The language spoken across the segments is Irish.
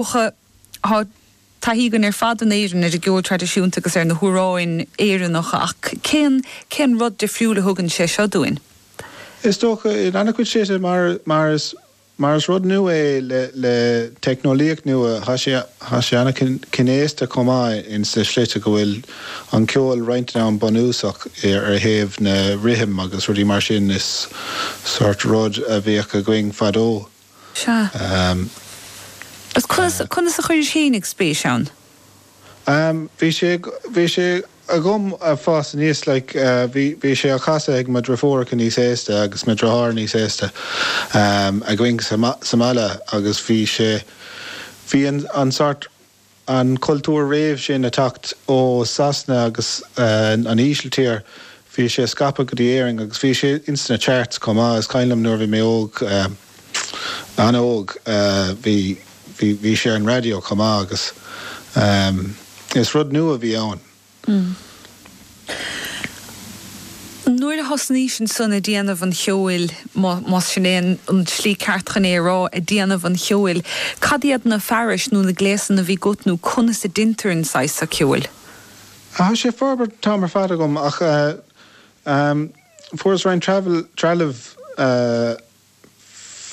Tá taithí againn ar fad in Éirinn ar an gceol traidisiúnta agus ar na hamhráin Éireannacha ach cén rud difriúil a thugann sé seo dúinn? Is dócha, in an-chuid slite, mar is rud nua é le teicneolaíocht nua. Tá sé an-chineasta chomh maith insa tslí go bhfuil an ceol roinnt den am an-bhunúsach ar thaobh na rithim agus rudaí mar sin. Is sórt rud a bhíodh againn fadó. Sea. Agus conas a chuiris féin spéis ann? Bhí sé, bhí sé agam ag fás aníos, like, bhí, bhí sé á chasadh ag mo dhriofúracha níos aosta agus mo dhriotháir níos aosta againn sa, sa mbaile agus bhí sé, bhí an, an sort an cultúr roimh sin ag teacht ó Sasana agus an Ísiltír, bhí sé scaipthe go dtí Éirinn agus bhí sé ins na charts chomh maith. Is cuimhin liom nuair a bhí mé óg, an-óg, bhí, bhí, bhí sé ar an raidió chomh maith agus is rud nua a bhí ann. Nuair a thosnaís ansan ag déanamh an cheoil, más sin é an tslí ceart chun é a rá, ag déanamh an cheoil, cad iad na fearais nó na gléasanna a bhí agat nó conas a deintear an saghas seo ceoil? Thá sé ag forbairt an t-am ar fad agam ach fuaireas roinnt trealaimh.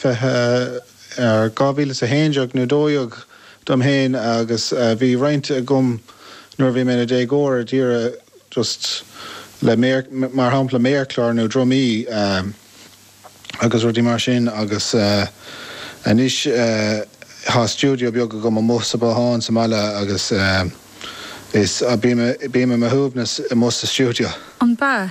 20, ar 2011 nó 12 dom féin agus bhí roinnt agam nuair a bhí mé ina déagóir d'iarraidh just le mar shampla méarchlár nó drumaí agus rudaí mar sin agus anois tá stiúideo beag agam amuigh sa bhothán sa mbaile agus is bím i mo shuaimhneas amuigh sa stiúideo. An b'ea?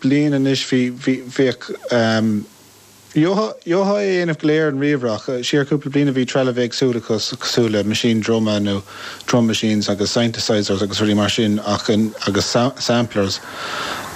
bliain anois, bhí, bhí, bhíodh, gheofá, gheofá é a dhéanamh go léir in ríomhaire, ach siar cúpla bliain a bhí trealamh éagsúil acu cosúil le meaisín druma nó drum machines agus synthesisers agus rudaí mar sin ach, agus samplers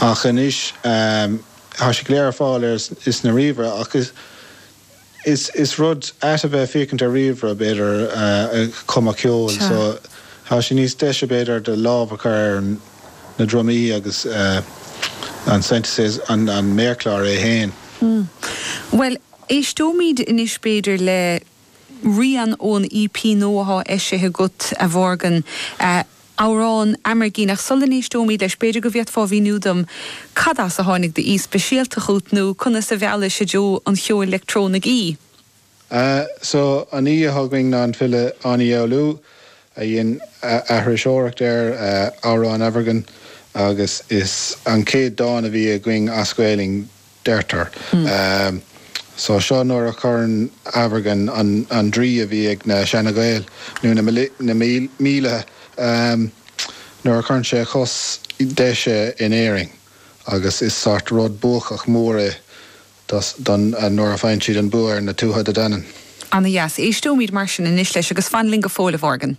ach anois tá siad go léir ar fáil ar, sna ríomhaire ach is. Is rud ait a bheith ag féachaint ar ríomhaire, b'fhéidir, chun cumadh ceoil so tá sé níos deise, b'fhéidir, do lámh a chur ar na drumaí agus an synthesizer, an méarchlár é féin. Mmh. Bhuel, éisteoimid anois, b'fhéidir, le rian ón EP nua atá eisithe agat, a Mhorgan. amhrán Amergin, ach sula n-éisteoimid leis, b'fhéidir go bhféadfá a mhíniú dom cad as a tháinig d'aoi speisialta chút, nó conas a mheallais i dtreo an cheoil leictreonaigh í? Ah, so, an t-aoi atá againn ná an file Áine Uí Fhoghlú, a dhein aithriseoireacht ar amhrán Amergin, agus is é an chéad dán a bhí againn as Gaelainn, deirtear. So seo nuair a chuireann Amergin an draoi a bhí ag na Seana Ghaeil, nó na míle, nuair a chuireann sé a chos deise in Éirinn, agus is sórt rud buacach mór é ó nuair a faigheann siad an bua ar na Tuatha Dé Danann. Ana dheas. Éisteoimid mar sin anois leis agus fan linn go fóill a Mhorgan.